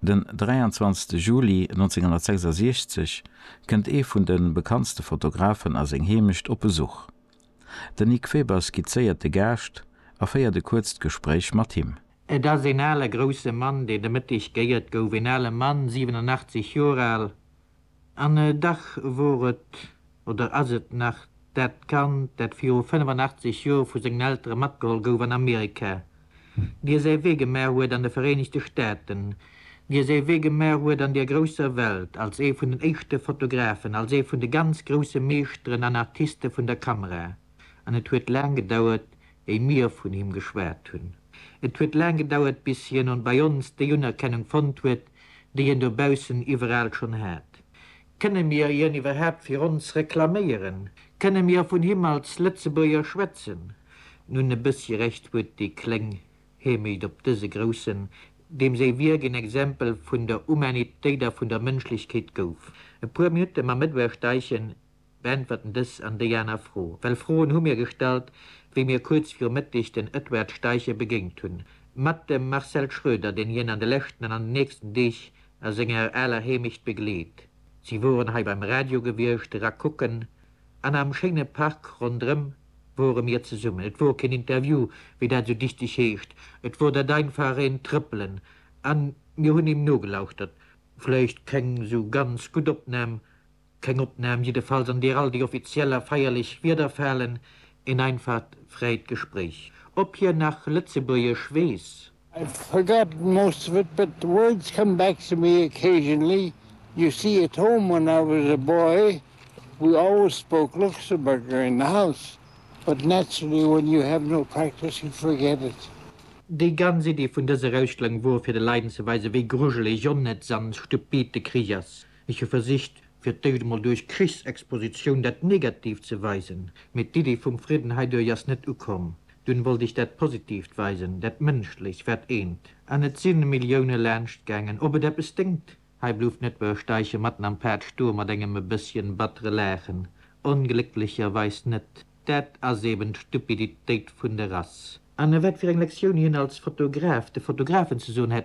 Den 23 Juli 1966 kënnt ee vun de bekanntste Fotografen a seng Heemecht op Besuch. Den Nic Weber skizzéiert de Gaascht a féiert e kuerzt Gespréich mat him. Et ass een ale grousse Mann, deen de Mëtteg geéiert gouf. Een ale Mann, 87 Joer al, An dach wor et, oder ass et nach, dat Kand, dat viru 85 Jor vu sengen Eltere matgeholl gouf an Amerika, dir säi Wee gemaach huet an de Vereenegte Staaten, dir säi Wee gemaach huet an der grousser Welt, als ee vun den éischte Fotografen, als ee vun de ganz grousse Meeschteren an Artiste vun der Kamera. An et huet laang gedauert, wéi mir vun him geschwat hunn. Et huet laang gedauert, bis hien an bei ons déi Unerkennung fonnt huet, déi hien dobaussen iwweraal schonn hat. Kënne mir hien iwwerhaapt fir ons reklaméieren? Kënne mir vun him als Lëtzebuerger schwätzen? Nun, e bëssi Recht huet dee kleng Hemeyd op dëse Groussen, deem säi Wierk een Exempel vun der Humanitéit a vun der Mënschlechkeet gouf. E puer Minutte mam Edouard Steichen beäntwerten dës an déi aner Fro, well Froen hu mir gestallt, wéi mir kuerz viru Mëtteg den Edward Steichen begéint hunn, mat dem Marcel Schröder, deen hien an de leschten an an den nächsten Deeg a senger aler Heemecht begleet. Si woren hei beim Radio gewiescht, era kucken, an am schéine Park ronderëm wore mir zesummen. Et wor keen Interview, wéi dat esou dichteg heescht, et wor dat einfach een Trëppelen, a mir hunn him nogelauschtert. Vläicht keng esou ganz gutt Opnam, Keng Opnahm jiddefalls an deer all déi offiziell a feierlech Wieder falen, een einfacht fräit Gespréich. Op hien nach Lëtzebuergesch weess? I've forgotten most of it, but the words come back to me occasionally. You see, at home when I was a boy we always spoke Luxemburger in the house, but naturally when you have no practice you forget it. Déi ganz Iddi vun dëser Austellung wor fir de Leiden ze weisen, wéi grujeleg, onnëtz an stupid de Krich ass. Ech hu versicht, fir d'éischt emol duerch Krichsexpositioun dat Negatiivt ze weisen, mee d'Iddi vum Fridden heiduerch ass net ukomm. Dunn wollt ech dat Positiivt weisen, dat Mënschlecht, wat eent. An et si Millioune laanscht gaangen. Ob et eppes déngt? Hei blouft net wëll steiche matten am Pad stoe mat engem e bësschen battere Laachen. Onglécklecherweis net. Dat ass eben d'Stupiditéit vun der Rass. An wat fir eng Lektioun hien als Fotograf de Fotografen ze soen hätt,